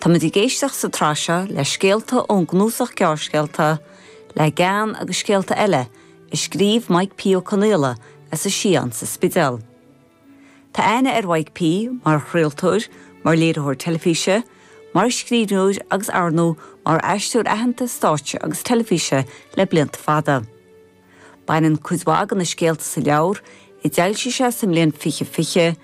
Táimid ag éisteacht sa tsraith seo le scéalta ón gcnuasach gearrscéalta Le Gean agus Scéalta Eile a scríobh Mike P. Ó Conaola as an Sián sa Spidéal. Tá aithne ar Mhike P. mar chraoltóir, mar léiritheoir teilifíse, mar scríbhneoir agus arnó mar aisteoir aitheanta stáitse agus teilifíse le blianta fada. Baineann cuid mhaith de na scéalta sa leabhar, a d'fhoilsigh sé sa mbliain fiche fiche,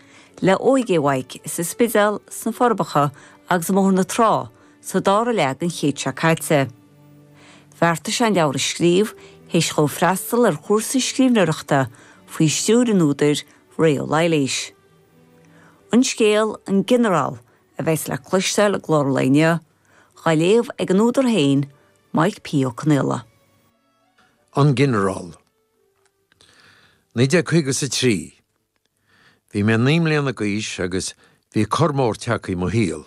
le óige Mhaidhc ar an Spidéal, sna Forbacha agus i mBóthar na Trá sa dara leath den chéad seo caite. Bheartaigh sé an leabhar a scríobh théis dhó freastal ar chúrsa scríbhneoireachta faoi stiúir an údair, Ré Ó Laighléis. An scéal, An Ginearál, a bheas le cloisteáil i gclár an lae inniu, dhá léamh ag an údar féin, Maidhc P. Ó Conaola. An Ginearál. 1953. Bhí mé naoi mbliana d'aois agus bhí cor mór tagtha i mo shaol.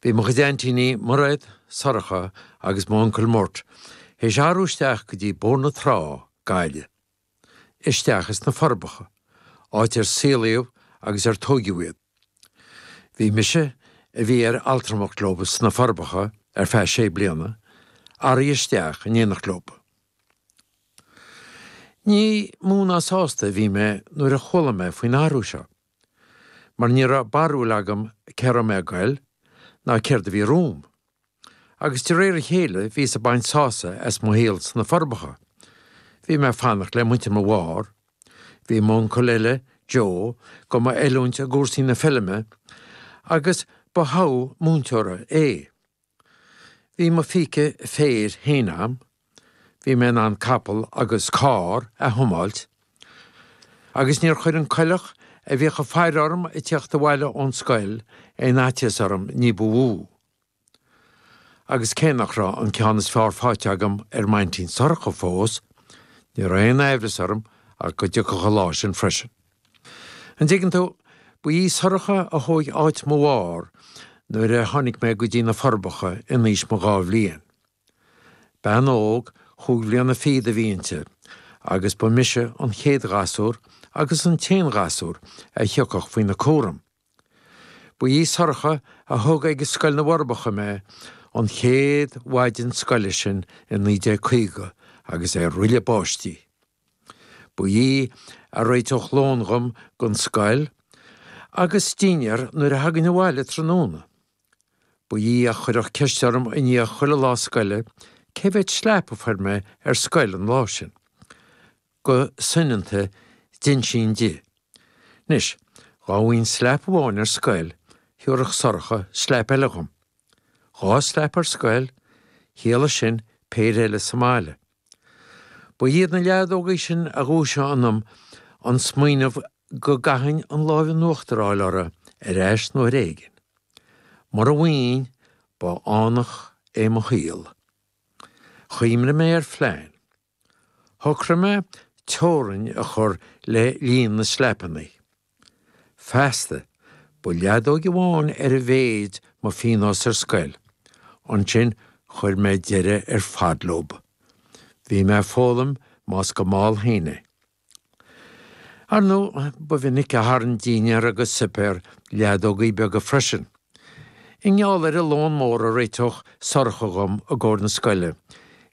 Bhí mo chuid aintíní, Mairéad, Sorcha agus m'uncail Murt, théis athrú isteach go dtí Bóthar na Trá, Gaillimh. isteach as na forbacha, áit ar saolaíodh agus ar tóigeadh iad. Bhí mise, a bhí ar altramacht leo sna forbacha ar feadh sé bliana, ag athrú isteach in éineacht leo. Ní mó ná sásta a bhí mé nuair a chuala mé faoin athrú seo. mar ní raibh barúil agam cé raibh mé ag goil ná céard a bhí romham. Agus de réir a chéile bhí mé ag baint sása as mo shaol sna Forbacha. Bhí mé ag fanacht le muintir mo mháthar, bhí m'uncail eile, Joe, do m'oiliúint i gcúrsaí na feilme agus ba thogha múinteora é. Bhí mo phíce féir féin agam, bhí mé in ann capall agus carr a thiomáilt, agus níor chuir an coileach a bhíodh ag faire orm ag teacht abhaile ón scoil aon fhaitíos orm ní ba mhó. Agus cé nach raibh an ceann is fearr faighte agam ar m'aintín Sorcha fós, ní raibh aon amhras orm ach go dtiocfadh an lá sin freisin. An dtuigeann tú, ba í Sorcha a thóig áit mo mháthar nuair a tháinig mé go dtí na Forbacha in aois mo dhá bhliain. Bean óg chúig bhliana fichead a bhí inti, agus ba mise an chéad ghasúr agus an t-aon ghasúr a thiocfadh faoina cúram. Ba í Sorcha a thug ag Scoil na bhForbacha mé, an chéad mhaidin scoile sin i 1950, agus é ag roilleadh báistí. Ba í a réiteodh lón dhom don scoil agus dinnéar nuair a thagainn abhaile tráthnóna. Ba í a chuirfeadh ceist orm i ndiaidh chuile lá scoile cé mhéad slap a fuair mé ar scoil an lá sin. Go soineanta d'insinn di. Anois, dhá bhfaighinn slap amháin ar scoil, thiúrfadh Sorcha slap eile dhom. Dhá slap ar scoil, chiallaigh sin péire eile sa mbaile. Ba iad na leadógaí sin a dhúisigh ionam an smaoineamh go gcaithfinn an láimh in uachtar a fháil orthu ar ais nuair éigin. Mura bhfaighinn, ba fhánach é mo shaol. Chuimhnigh mé ar phlean. Shocraigh mé teorainn a chur le líon na slapannaí. Feasta, ba leadóg amháin ar a mhéid mo phíonós ar scoil. Ansin, chuir mé deireadh ar fad leo. Bhí mé ag foghlaim más go mall féin é. Ar ndóigh, ba mhinic a tharraing dinnéar agus suipéar leadógaí beaga freisin. I ngeall ar an lón mór a réiteodh Sorcha dhom i gcomhair na scoile,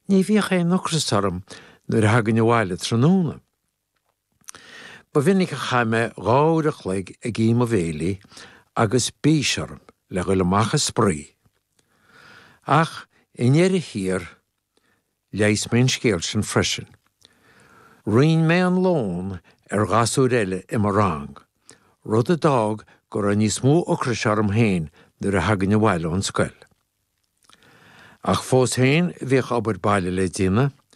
ní bhíodh aon ocras orm nuair a thagainn abhaile tráthnóna. Ba mhinic a chaith mé dhá uair a chloig ag ithe mo bhéilí agus bís orm le dhul amach ag spraoi. Ach, i ndeireadh thiar, Leigheas mé an scéal sin freisin. Roinn mé an lón ar ghasúir eile i mo rang, rud a d'fhág go raibh níos mó ocrais orm féin nuair a thagainn abhaile ón scoil. Ach fós féin bhíodh obair baile le déanamh,